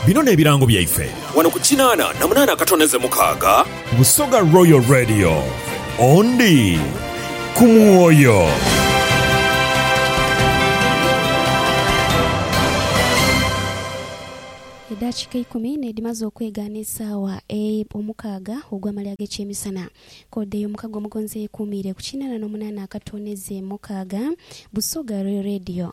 Bino n'ebirango byaife. Wano ku kinaana na munaana akatoneze mukaaga. Busoga Royal Radio, Ondi ku mwoyo. Eddakiika eikumi n'edhimaze okwegaana esaawa eye omukaaga ogw'amale ag'ekyemisana, kkoodi ey'omukago omugonzi eyekuumiire ku kinaana n'omunaana akatoneze mukaaga. Busoga Royal Radio.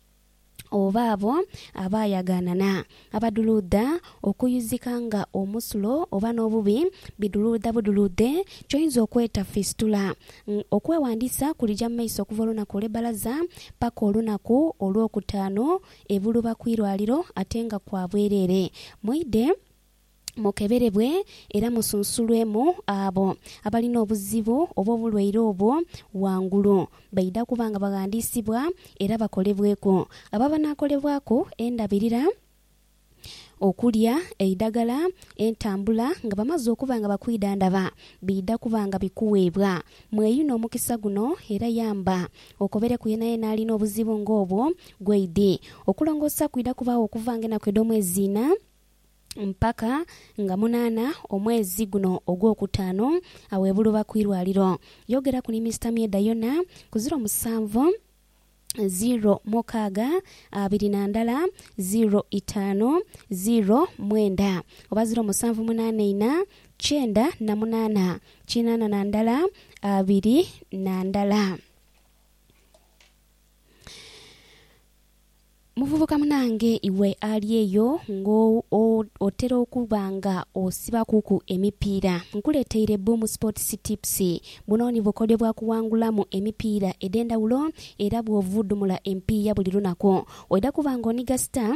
oba abo abaayaganana, abaduluudha okuyuzika nga omusulo oba n'obubi biduluudha buduluudhe ky'oyinza okweta fisitula. Okwewandiisa kulija mu maiso okuva olunaku olw'ebbalaza paka olunaku Olwokutaanu e Buluba ku irwaliro ate nga kwa bwereere. Mwidhe. mukeberebwe era musunsulwemu abo abalina obuzibu oba obulwaire obwo ghangulu. Baidha kuba nga baghandiisibwa era bakolebweku abo abanaakolebwaku endabirira, okulya, eidagala, entambula. Nga bamaze okuba nga bakwidhandhaba, biidha kuba nga bikuweebwa. Mweyune omukisa guno era yamba okobereku yenayena alina obuzibu ng'obwo ghaidhi. Okulongoosa kwidha kubaagho okuva ng'enaku edh'omwezi inha. mpaka nga munaana omwezi guno ogwokutaanu awebuluba ku irwaliro. Yogeraku ni Mister Myeda yona ku ziro musanvu ziro mukaaga abiri na ndala ziro itaanu ziro mwenda oba ziro musanvu munaana ina kyenda na munaana kinaana na ndala abiri na ndala. Muvubuka munange, iwe ali eyo nga otera okuba nga osibakuku emipiira, nkuleeteire Boom Sports Tips. Buno ni bukodyo bwa kuwangulamu emipiira edh'endhawulo era bw'ovudhumula empiiya buli lunaku, oidha kuba nga oniga star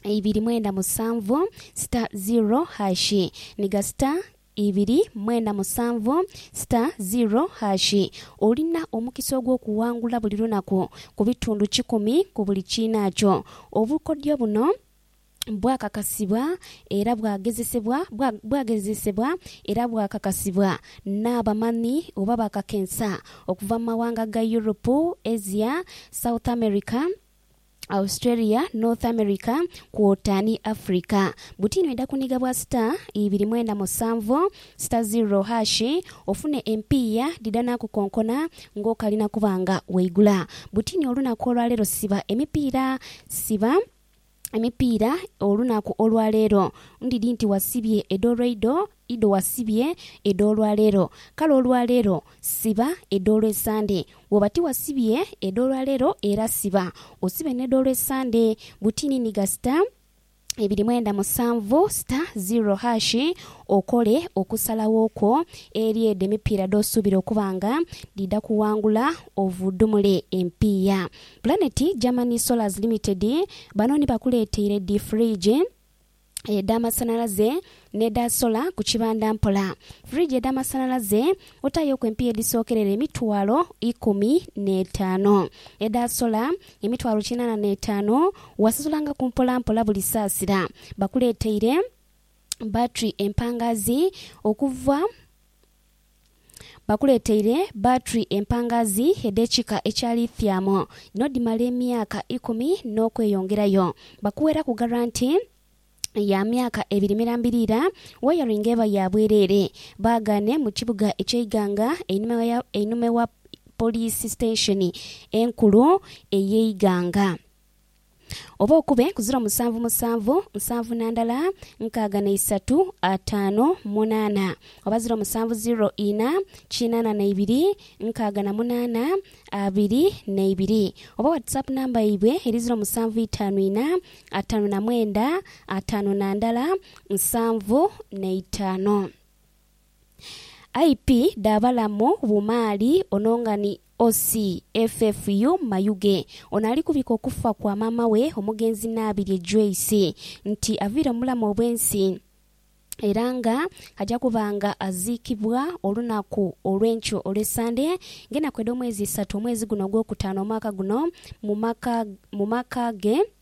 ibiri mwenda musanvu star zero hash. Niga star ibiri mwena musanvu star ziro hash. Olina omukisa ogw'okuwangula buli lunaku ku bitundu kikumi ku buli kiinaakyo. Obukodyo buno bwakakasibwa era bwagezesebwa bwa bwagezesebwa era bwakakasibwa n'abamanhi oba bakakensa okuva mu mawanga ga Europe, Asia, South America, Australia, North America kwota ni Africa. Butini oidha kuniga bwa star ibiri mwenda musanvu star zero hash ofune empiiya dhidha nakukonkona ngokali nakuba nga waigula butini olunaku olwaleero siba emipiira siba emipiira olunaku olwaleero ndidhi nti wasibye edho lwaidho Idho wasibye edh'olwa leero, kale olwa leero siba edh'Olwesande. Bw'oba tiwasibye edh'olwa leero era siba, osibe n'edh'Olwesande. Butini ni gasita ebiri mwenda musanvu sita ziro hashi okole okusalagho kwo eri edho emipiira dh'osuubira okuba nga dhidha kuwangula ovudhumule empiiya. Planet Germany Solars Limited bano ni bakuleeteire dhi fridge. edh'amasanhalaze n'edha sola ku kibanda mpola. Fridge edh'amasanhalaze otaayoku empiiya edhisookerera emitwalo ikumi n'etaanu. Edha sola emitwalo kinaana n'etaanu. Wasazulangaku mpolampola buli saasira. Bakuleeteire battery empangaazi okuva. Bakuleeteire batri empangaazi edh'ekika ekya lithium n'odhimala emyaka ikumi n'okweyongerayo. Bakuweeraku garanti ya myaka ebiri mirambirira. Wayaringi eba ya bwereere. Baagaane mu kibuga eky'e Iganga einhuma ya einhuma wa Poliisi Sitensheni enkulu ey'e Iganga. Oba okube ku ziro musanvu musanvu, nsanvu na ndala, nkaaga na isatu, ataano, munaana. Oba ziro musanvu ziro ina, kinaana na ibiri, nkaaga na munaana, abiri na ibiri. Oba WhatsApp namba yaibwe eri ziro musanvu itaanu ina, ataanu na mwenda, ataano na ndala, nsanvu na itaano. IP dha balamu bumaali ono nga ni OC FFU Mayuge ono ali kubika okufa kwa maama we omugenzi Naabirye Joyce nti aviire mu bulamu obw'ensi era nga aja kuba nga aziikibwa olunaku olw'enkyo olwe Sande ng'enaku edh'omwezi isatu omwezi guno ogwokutaano omwaka guno mu maka ge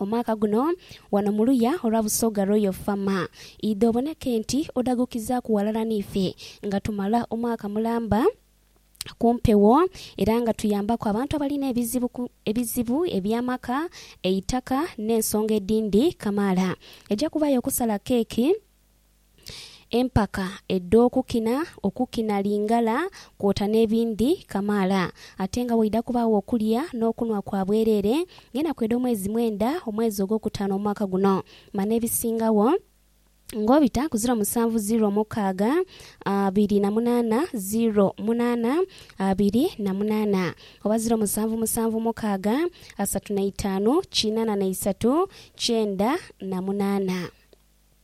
omwaka guno wano mu luya olwa Busoga Royal Fama. Idha oboneke nti odhagukizaaku ghalala n'ife nga tumala omwaka mulamba ku mpewo era nga tuyambaku abantu abalina ebizibu ku ebizibu eby'amaka, eitaka n'ensonga edhindi kamaala. Eja kubayo okusala keeki. empaka edh'okukina, okukina Lingala kwota n'ebindhi kamaala ate nga waidha kubaagho okulya n'okunhwa kwa bwereere ng'enaku edh'omwezi mwenda omwezi ogwokutaano omwaka guno manha ebisingagho ng'obita ku ziro musanvu ziro mukaaga abiri na munaana ziro munaana abiri na munaana oba ziro musanvu musanvu mukaaga asatu na itaanu kinaana na isatu kyenda na munaana.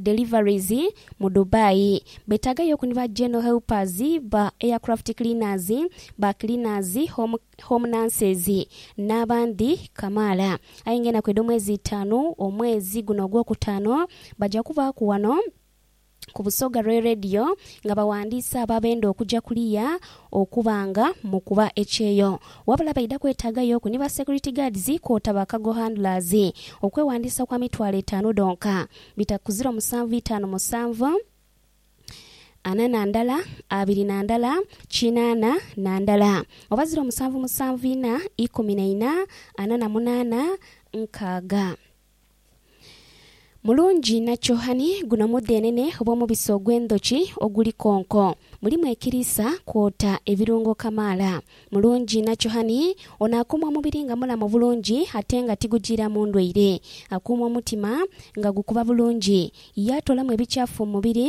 deliveries mu Dubai. Betaaga yo ku ni ba general helpers, ba aircraft cleaners, ba cleaners, home home nurses n'abandi kamaala. Aye nga enaku edh'omwezi itaanu omwezi guno ogwokutaano baja kubaaku wano ku Busoga Royal Radio nga bawandiisa abo abenda okuja kuliya okuba nga mu kuba ekyeyo wabula baidha kwetaaga yoku ni ba security guards kwota ba cargo handlers. Okwewandiisa kwa mitwalo etaanu dhonka bita ku ziro musanvu itaanu musanvu ana na ndala abiri na ndala kinaana na ndala oba ziro musanvu musanvu ina ikumi na ina ana na munaana nkaaga. Mulungi Nachohani, Guno mudhenene oba omubisi ogw'endhoki oguli konko. Mulimu ekiriisa kwota ebirungo kamaala. Mulungi Nachohani ono akuuma omubiri nga mulamu bulungi ate nga tigujiiramu ndwaire. Akuuma omutima nga gukuba bulungi. Yaatoolamu ebikyafu mu mubiri.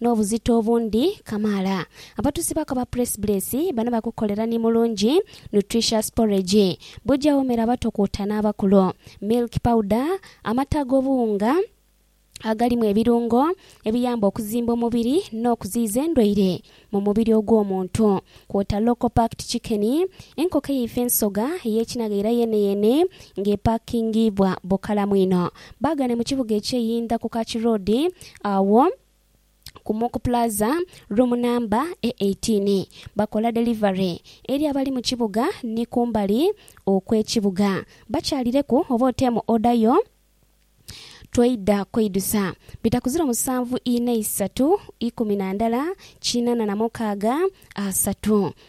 N'obuzito obundi kamaala. Abatuusi ba Kaba Press Bless bano bakukolera ni mulungi, nutritious porridge. Bujja womera abato kwota n'abakulu. Milk powder, amata ag'obuwunga agalimu ebirungo ebiyamba okuzimba omubiri n'okuziyiza endwaire mu mubiri ogw'omuntu. Kwota local packed chicken, enkoko eyaife ensoga ey'ekinaga era yeeneyeene ng'epakingiibwa bukalamu inho. Baagane mu kibuga eky'eyindha ku Kachi Road agho ku Mock Plaza, room namba e eighteen. Bakola delivery eri abali mu kibuga ni kumbali okw'ekibuga. Bakyalireku oba oteemu order yo twaidha kweidusa. Bita ku ziro musanvu inha isatu ikumi na ndala kinana na mukaaga asatu.